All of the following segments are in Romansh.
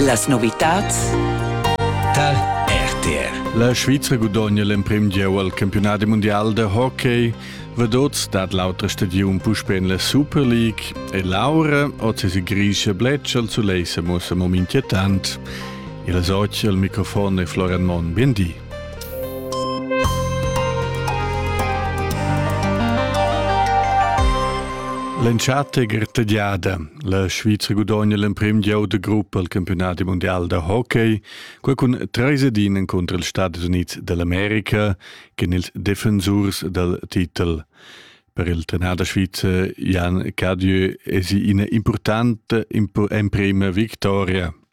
Las novitads tar RTR. La Svizra gudogna l'emprim gieu al campionat mundial da hockey. Vedots dat l'autra stagiun puspè en la Super League e l'aura oz es grischa bletscha al sulei sa muossa mo inquietant. Il soci al microfon è Florian Monn. Biendi. L'entschatta è grtegiada. La Svizra gudogna l'emprim gieu de gruppa al campionat mondial da hockey, quei cun treis edin encontro ils Stati Unids dell'America cun ils defensurs dal titel. Per il trenader svizzer Jan Cadieu es ina importante emprima victoria.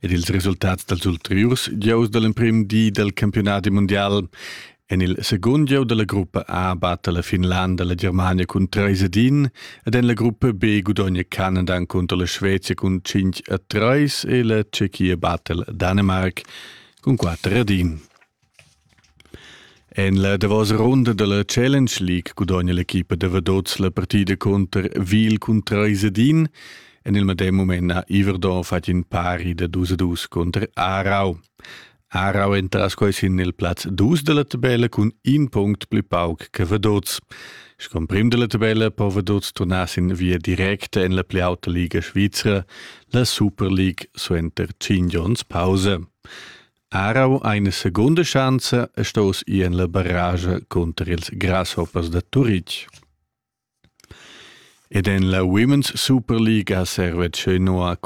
Ed ils resultats dals ulteriurs gieus da l'emprim di dal campiunadi mundial en il segund gieu da la gruppa A batta la Finlanda la Germania cun trais ed in ed en la gruppa B gudogna Canada encunter la Svezia cun cinc a trais e la Tschechia batta il Dänemark cun quatter ed in. En la davos runda dalla Challenge League gudogna l'equipa da Vadots la partida cunter Wiel cun treis ed in. En il medem mument ha Iverdon fatg in pari da dus a dus cunter Aarau. Aarau entras quai sin il plaz dus dalla tabella cun in punct pli pauc che Vadots. Sco prim dalla tabella po Vadots turnar sin via directa en la pli auta liga svizra, la Super League suenter cinc onns pausa. Arau ha ina secunda schanza e stos ir en la barrage cunter ils grasshoppers da Turitg. Ed en la Women's Super League ha Servece Noa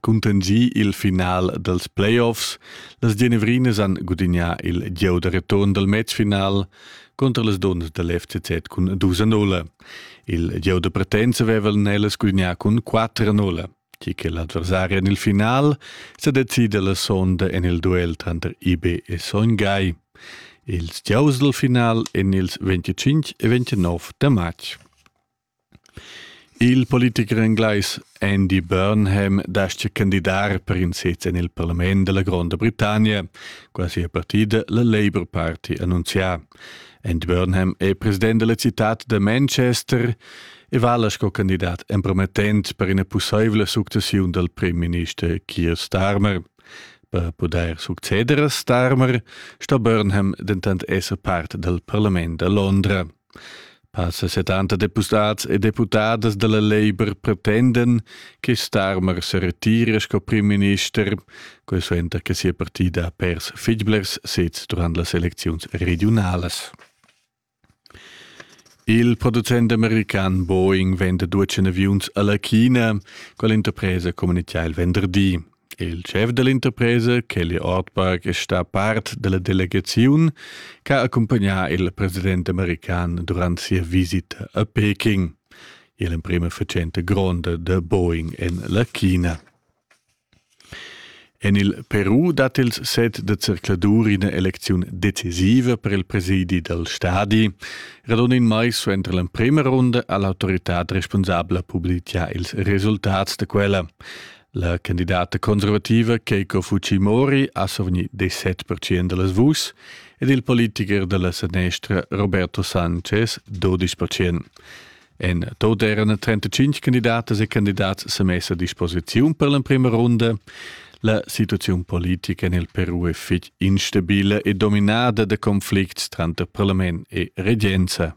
contingì il final dals playoffs. Las Genevrinas han gudignà il gieu da return dal matchfinal contra las dunnas dal FCZ cun 2-0. Il gieu da partenza avevan ellas gudignà cun 4-0. Ti che l'adversari en il final sa decida la sonda en il duel tranter IB e Sogn Gai. Ils giaus dal final en ils 25 e 29 da matg. Il politiker englais Andy Burnham dascha candidar per in sez en il parlament della Gronda Britannia, quasi a partida la Labour Party annunzià. En Burnham è president della cittad da Manchester e vala sco candidat empromettent per ina pusseivla successiun dal premierminister Keir Starmer. Per pudair succeder a Starmer sto Burnham dentant esser part dal parlament da Londra. Passa setanta depustads e deputadas dalla Labour pretenden che Starmer se retire sco primminister, quei suenter che sia partida ha pers fitg blers sez durant las elecziuns regionalas. Il producent american Boeing venda duecen aviuns alla China, quell'interpresa comunicia il venderdi. Il schef dall'interpresa, Kelly Ortberg, è stà part dalla delegaziun che ha accumpagnà il president american durant sia visita a Peking. Il emprima fatschenta gronda da Boeing en la China. En il Peru dat ils set da zercladur ina elecziun decisiva per il presidi dal stadi. Radon in mai suenter l'emprima runda ha l'autoritad responsabla publitgà ils resultats da quella. La candidata conservativa Keiko Fujimori ha survgni 17% da las vuschs ed il politicher da la sanestra Roberto Sanchez 12%. En tot erano 35 candidatas e candidats sa messa a disposiziun per l'emprima runda. La situazione politica nel Peru è fitch instabile e dominada da conflicts tranter parlament e regenza.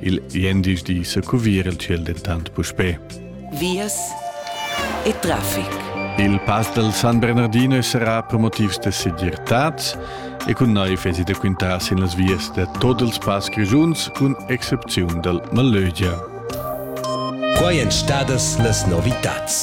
Il gliendisdi secuvir il ciel dentant puspè. Vias e traffic. Il pass dal San Bernardino sarà promotivs da segirtad e cun naiv esi da quintar sin las vias da tot ils pass grischuns cun excepziun dal Malögia. Quai èn stadas las novitads.